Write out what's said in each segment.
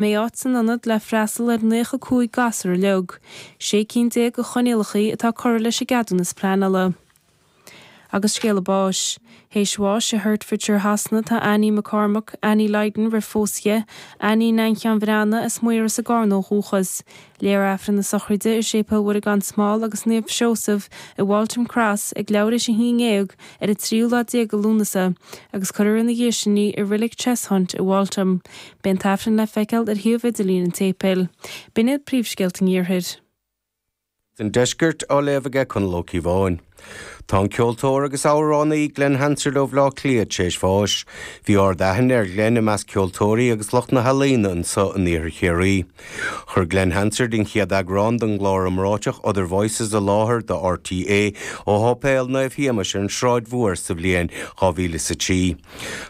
mbeidh áit san ionad le freastal ar naocha cúig gasúr uilig sé cinn déag de choinníollacha atá curtha leis an gceadúnas pleanála. Agus scéala báis. Théis bháis i Hertfordshire Shasana tá Annie McCormack, Annie Lydon roimh phósadh di, Annie, inghean Bhreanna, as Maoras i gCarna ó dhúchas. Léifear Aifreann na sochraide i Séipéal Mhuire Gan Smál agus Naomh Seosamh i Waltham Cross ag leathuair théis a haon déag ar an tríú lá déag de Lúnasa agus cuirfear ina dhiaidh sin í i Reilig Cheshunt i Waltham. Beidh an tAifreann le feiceáil ar shuíomh idirlín an tséipéil. B'in iad príomhscéalta an Iarthair. An Deiscirt á léamh aige Conall Ó Ciobháin. Tá an ceoltóir agus amhránaí Glen Hansard ó Bhleá Cliath tar éis bháis. Bhí ardaithne ar Ghlen i measc ceoltóirí agus lucht na healaíona anseo in Iarthar Chiarraí. Chuir Glen Hansard an chéad eagrán den gclár iomráiteach Other Voices i láthair do RTÉ ó Sháipéal Naomh Shéamais ar an Sráid Mhór sa bhliain 2000 is a trí.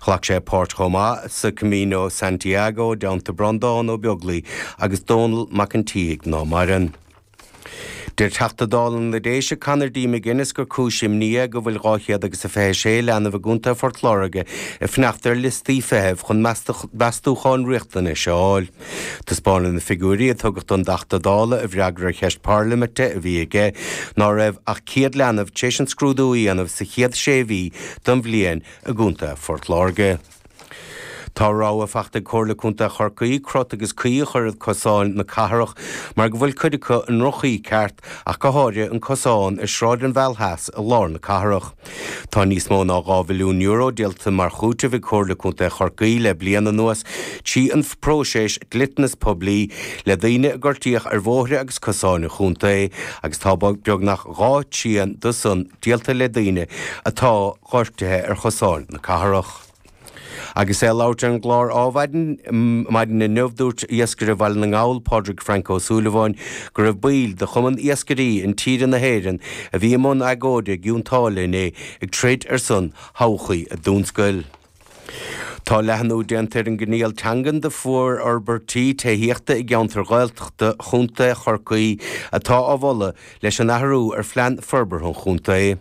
Ghlac sé páirt chomh maith sa Camino Santiago i dteannta Breandán Ó Beaglaoi agus Dónall Mac an tSíthigh, ná maireann. Deir Teachta Dála na Déise Conor D McGuinness gur cúis imní é go bhfuil dhá chéad agus a fiche a sé leanbh i gcontae Phort Láirge ag fanacht ar liostaí feithimh chun meastúcháin riachtanais a fháil. Taispeánann na figiúirí a tugadh don dTeachta Dála i bhfreagra ar cheist parlaiminte a bhí aige ná raibh ach céad leanbh tar éis an scrúdú a dhéanamh sa chéad sé mhí den bhliain i gcontae Phort Láirge. Tá rabhadh fachta ag Comhairle Contae Chorcaí crot agus caoi a chur ar chosáin na cathrach mar go bhfuil cuid acu i ndroch-chaoi ceart, ach go háirithe an cosán ar Sráid an Mheal Theas i lár na cathrach. Tá níos mó ná €2 mhilliún díolta mar chúiteamh ag Comhairle Contae Chorcaí le bliain anuas trí an phróiseas dliteanas poiblí le daoine a gortaíodh ar bhóithre agus cosáin an chontae agus tá beagnach dhá thrian de san díolta le daoine atá gortaithe ar chosáin na cathrach. Agus é ag labhairt ar an gclár Ádhmhaidin maidin inniu, dúirt iascaire Bhaile na nGall, Pádraig Frank Ó Súilleabháin, go raibh baill de Chumann Iascairí Intíre na hÉireann a bhí i mbun agóide i gCionn tSáile inné ag troid ar son thodhchaí a dtionscail. Tá leathnú déanta ar an gcoinníoll teangan do mhórfhorbairtí tithíochta i gceantair Ghaeltachta Chontae Chorcaí atá á mholadh leis an athrú ar Phlean Forbartha an Chontae.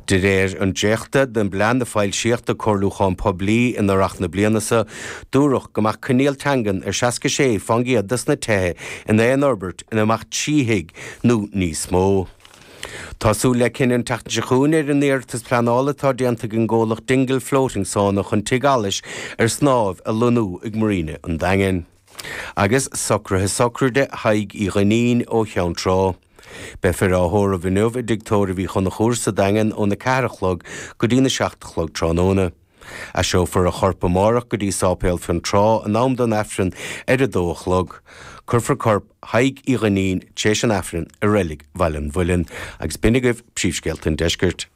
De réir an dréachta den bplean a foilsíodh do comhairliúchán poiblí in earrach na bliana seo, dúradh go mbeadh coinníoll teangan ar 66 fán gcéad de sna tithe in aon fhorbairt ina mbeadh trí thigh nó níos mó. Tá súil le cinneadh an tseachtain seo chugainn ar an iarratas pleanála atá déanta ag an gcomhlacht Dingle Floating Sauna chun tigh allais ar snámh a lonnú ag Marina an Daingin. Agus socraithe sochraide Thaidhg Uí Dhuinnín ó Cheann Trá. Beifear á thórramh inniu i dtigh tórraimh Uí Chonchúir sa Daingean óna ceathair a chlog go dtína seacht a chlog tráthnóna. Aistreofar a chorp amárach go dtí Sáipéal Fionn Trá in am don Aifreann ar 2 a chlog. Cuirfear corp Thaidhg Uí Dhuinnín tar éis an Aifrinn i Reilig Bhaile an Mhuilinn. Agus b'in agaibh Príomhscéalta an Deiscirt.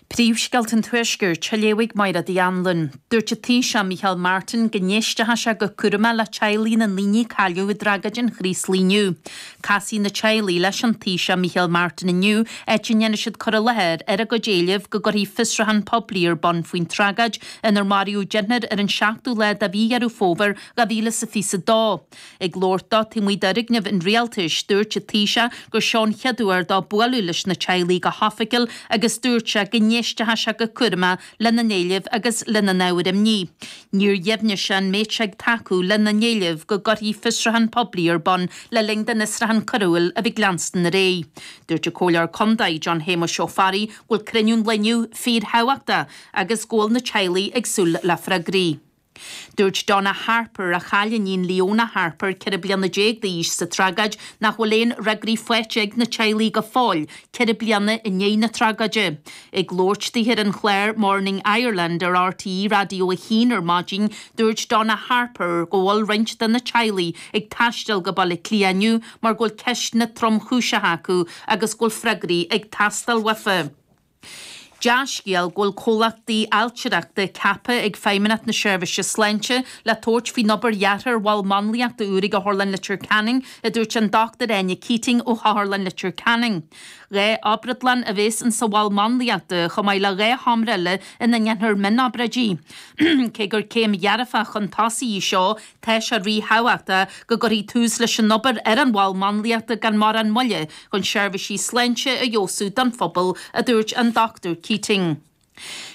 Príomhscéalta an Tuaiscirt, a léifidh Máire D. Anluain. Dúirt an Taoiseach, Micheál Martin, go n-éistfeadh sé go cúramach le teaghlaigh na ndaoine a cailleadh i dtragóid an Chraoslaigh inniu. Casfaidh na teaghlaigh leis an Taoiseach Micheál Martin inniu áit a ndéanfaidh siad cur i láthair ar a gcuid éileamh go gcuirfí fiosrúchán poiblí ar bun faoin tragóid inar maraíodh deichniúr ar an tseachtú lá de mhí Dheireadh Fómhair 2022. Ag labhairt dó taobh amuigh d'Fhoirgnimh an Rialtais, dúirt an Taoiseach gur seo an chéad uair dó bualadh leis na teaghlaigh go hoifigiúil agus dúirt sé go n-éistfeadh sé go cúramach lena n-éilimh agus lena n-ábhair imní. Níor dheimhnigh sé an mbeadh sé ag tacú lena n-éileamh go gcuirfí fiosrúchán poiblí ar bun le linn don fhiosrúchán coiriúil a bheith ag leanstan ar aghaidh. Dúirt an Comhairleoir Contae, John Shéamuis Ó Fearraigh, go bhfuil cruinniú an lae inniu fíorthábhachtach agus go bhfuil na teaghlaigh ag súil le freagraí. Dúirt Donna Harper, a chaill a hiníon Leona Harper, ceithre bliana déag d'aois, sa tragóid nach bhfuil aon fhreagraí faighte ag na teaghlaigh go fóill, ceithre bliana i ndiaidh na tragóide. Ag labhairt di ar an chlár Morning Ireland ar RTÉ Raidió a hAon ar maidin, dúirt Donna Harper go bhfuil roinnt de na teaghlaigh ag taisteal go Baile Átha Cliath inniu mar go bhfuil ceisteanna tromchúiseacha acu agus go bhfuil freagraí ag teastáil uathu. Dea-scéal go bhfuil comhlachtaí ailtireachta ceaptha ag Feidhmeannacht na Seirbhíse Sláinte le tabhairt faoin obair dheartha ar mhol máinliachta úr ag Otharlann Leitir Ceanainn, a dúirt an Dr Áine Keating ó Otharlann Leitir Ceanainn. Dhá obrádlann a bheas insa mhol máinliachta, chomh maith le dhá sheomra eile ina ndéanfar mionobráidí. Cé gur céim dhearfach chun tosaigh í seo, Tá sé ríthábhachtach go gcuirfí tús leis an obair ar an mhol máinliachta gan mórán moille chun seirbhísí sláinte a fheabhsú don phobal, a dúirt an Dr Keating.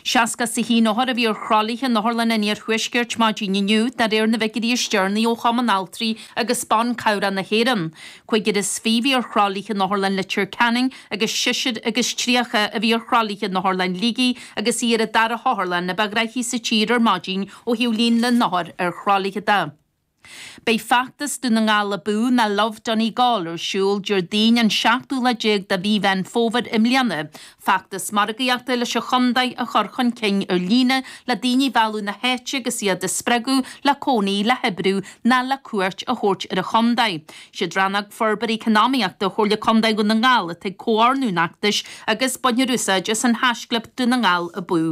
Seasca is a haon othar a bhí ar thralaithe in otharlanna an Iarthuaiscirt maidin inniu, de réir na bhfigiúirí is deireanaí ó Chumann Altraí agus Ban Cabhrach na hÉireann. Cúigear is fiche a bhí ar thralaithe in Otharlann Leitir Ceanainn agus seisear agus tríocha a bhí ar thralaithe in Otharlann Shligigh agus í ar an dara hotharlann ba ghnoithí sa tír ar maidin Ó thaobh líon na n-othar ar thralaithe de, beidh feachtas Dún na nGall Abú ná Love Donegal ar siúl Déardaoin an tseachtú lá déag de mhí Mheán Fómhair i mbliana, feachtas margaíochta leis an chontae a chur chun cinn ar líne le daoine a mhealladh na háite agus iad a spreagadh le cónaí, le hoibriú ná le cuairt a thabhairt ar an chontae. Is iad Rannóg Forbartha Eacnamaíochta Chomhairle Contae Dhún na nGall atá ag comhordú an fheachtais agus bainfear úsáid as an haischlib Dún na nGall Abú.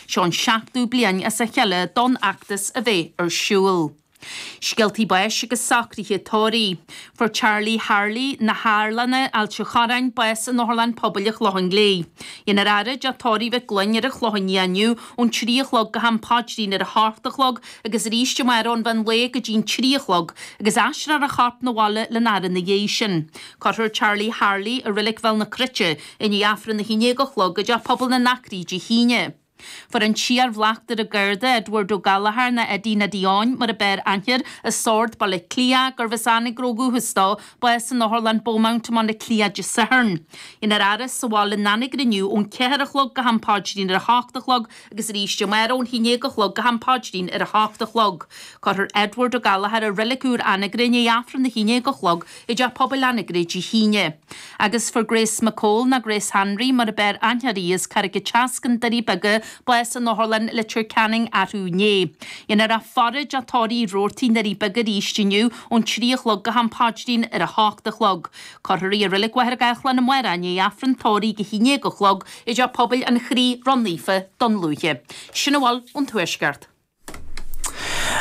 Seo an seachtú bliain as a chéile don fheachtas a bheith ar siúl. Scéaltaí báis agus socruithe tórraimh. Fuair Charlie Harley na hArlanna, Ailt an Chorráin, bás in Otharlann Pobail an Chlocháin Léith. Dhéanfar a fhaire i dTeach Tórraimh Mhig Fhloinn ar an Chlochán Liath inniu ón trí a chlog go ham paidrín ar a hocht a chlog agus arís amárach ón mheán lae go dtí'n trí a chlog, agus aistreofar a chorp 'na bhaile lena fhaire 'na dhéidh sin. Cuirfear Charlie Harley i Reilig Bhéal na Cruite i ndiaidh Aifreann a haon déag a chlog i dTeach Pobail na nAcraí Dé hAoine. Fuair an t-iar-bhleachtaire Garda, Edward Ó Gallchóir nó Eddie Neidí Eoin mar a b'fhearr aithne air, Sord, Baile Átha Cliath, gurbh as Anagaire ó dhúchas dó, bás in Otharlann Beaumont i mBaile Átha Cliath Dé Sathairn. Dhéanfar a fhaire sa bhaile in Anagaire inniu ón ceathair a chlog go ham páidrín ar a h-ocht a chlog, Agus arís amárach ón haon déag a chlog go ham paidrín ar a h-ocht a chlog. Cuirfear Edward Ó Gallchóir i Reilig Úr Anagaire i ndiaidh Aifreann a haon déag a chlog i dTeach Pobail Anagaire Dé hAoine. Agus fuair Grace McCole, nó Grace Hanraí mar ab fhearr aithne uirthi as Carraig an tSeascain, Doirí Beaga, bás in Otharlann Leitir Ceanainn arú inné. Dhéanfar a faire i dTeach Tórraimh Roarty i nDoirí Beaga arís inniu ón trí a chlog go ham paidrín ar a h-ocht a chlog. Cuirfear í i Reilig Mhachaire Gathlán amárach i ndiaidh Aifreann tórraimh a haon déag a chlog i dTeach Pobail an Chroí Ró-Naofa Dún Lúiche. Sin a bhfuil ón Tuaisceart.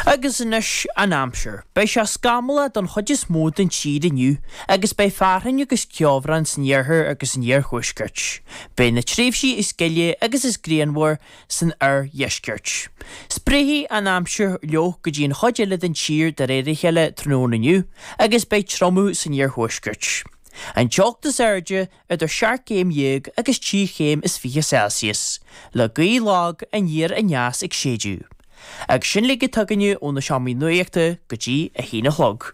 Agus anois an aimsir. Beidh sé scamallach don chuid is mó den tír inniu agus beidh fearthainn agus ceobhrán san iarthar agus san iarthuaisceart. Beidh na tréimhsí is gile agus is grianmhaire san oirdheisceart. Spréifidh an aimsir fhliuch go dtí an chuid eile den tír de réir a chéile tráthnóna inniu agus beidh triomú san iarthuaisceart. An teocht is airde idir seacht gcéim dhéag agus trí chéim is fiche Celsius, le gaoth lag aniar aneas ag séideadh. Agus sin uilig atá againne ó na seomraí nuaíochta go dtí a haon a chlog.